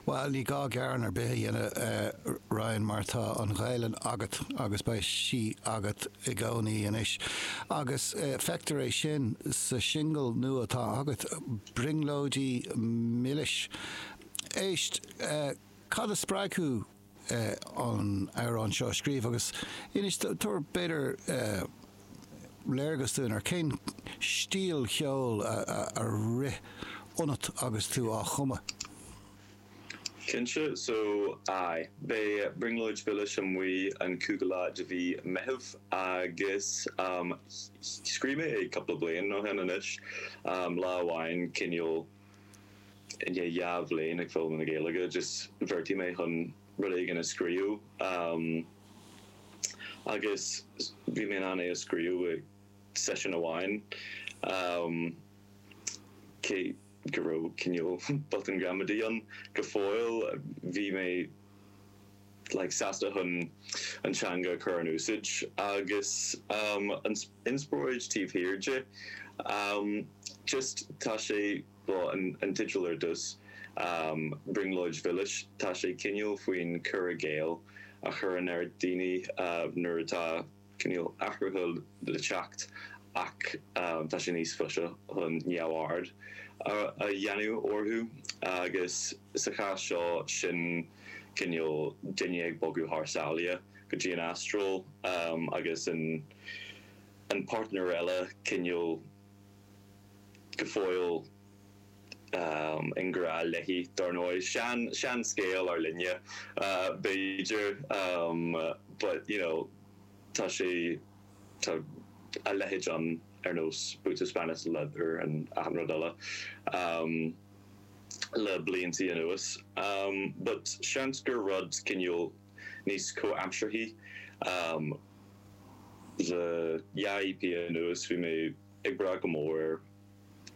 Bhuel, ní gá gearán ar bith a dhéanamh a Ryan mar tá an Ghaelainn agat agus beidh sí agat i gcónaí anois. Agus feictear é sin sa singil nua atá agat, 'Brionglóidí Milis'. Éist, cad a spreag thú? an amhrán seo a scríobh agus inis, tabhair b'fhéidir léargas dúinn ar cén stíl cheoil a rith ionat agus tú á chumadh. Cinnte so aye, beidh Brionglóid Mhilis amuigh an cúigiú lá de mhí Meitheamh agus scríobh mé é cúpla bliain ó shin anois, lá amháin, cineál. I ndiaidh dhá bhliain ag foghlaim na Gaeilge agus bheartaigh mé chun rud éigin a scríobh agus bhí mé in ann é a scríobh i seisiún amháin cé go raibh cineál botún gramadaí ann go fóill. Bhí mé. like sásta chun an teanga a chur in úsáid agus an inspioráid taobh thiar de. Just tá sé, bhuel an an teideal ar dtús, Brionglóid Mhilis, tá sé cineál faoin cur i gcéill a chuireann ar dhaoine nuair atá, cineál athruithe le teacht ach tá sé níos fusa chun neamhaird a dhéanamh orthu agus sa chás seo sin cineál duine ag bogadh thar sáile go dtí an Astráil agus an páirtnéir eile cineál go fóill i ngrá léi, dar ndóigh. An seanscéal ár linne, b'fhéidir, but, you know, tá sé, tá a leithéid ann ar nós Boots of Spanish Leather and achan rud eile le blianta anuas. But seans gur rud cineál níos comhaimsearthaí. Le dhá EP anuas bhí mé ag brath go mór ar.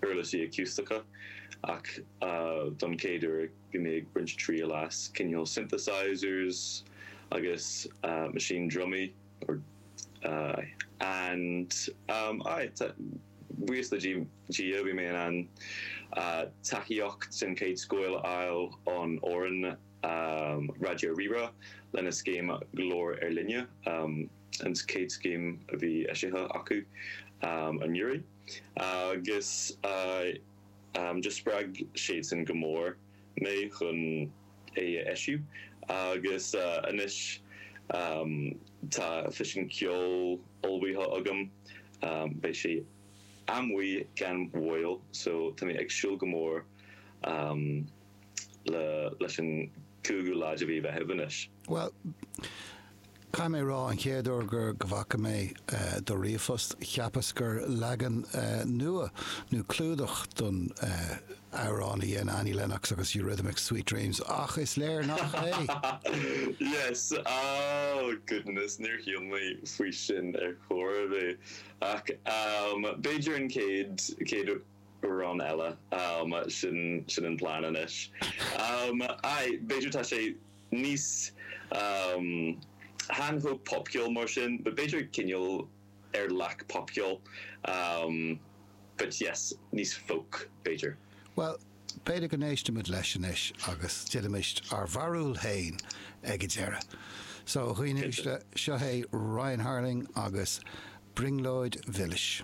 uirlisí acústacha, ach don chéad uair bhí mé ag baint triail as cineál synthesizers agus meaisín drumaí or aye and um aye buíochas le Dia bhí mé in ann tacaíocht den chéad scoth a fháil ón fhoireann Raidió Rí-Rá lena scéim Glór Ár Linne, an chéad scéim a bhí eisithe acu anuraidh. agus just spreag siadsan go mór mé chun é a eisiú, agus anois tá físeán ceoil ullmhaithe agam, beidh sé amuigh gan mhoill, so tá mé ag súil go mór. leis an gcúigiú lá de mhí Mheithimh anois. Bhuel, caithfidh mé a rá, an chéad uair gur, go bhfaca mé do ríomhphost, cheapas gur leagan nua nó clúdach don amhrán a dhéan Annie Lennox agus Eurythmics, Sweet Dreams, ach is léir nach é! Yes! Oh, goodness, níor shíl mé faoi sin ar chor ar bith. Ach b'fhéidir an chéad, chéad. Amhrán eile, ámh, sin sin an plean anois. Ámh, aye, b'fhéidir tá sé níos, ámh, chan chomh popcheoil mar sin, but b'fhéidir cineál ar leath popcheoil, ámh, but yes, níos folk, b'fhéidir. Bhuel, b'fhéidir go n-éistimid leis anois agus déanaimist ár bharúil fhéin ag a deireadh. So, a dhaoine uaisle, seo é Ryan Harling agus Brionglóid Mhilis.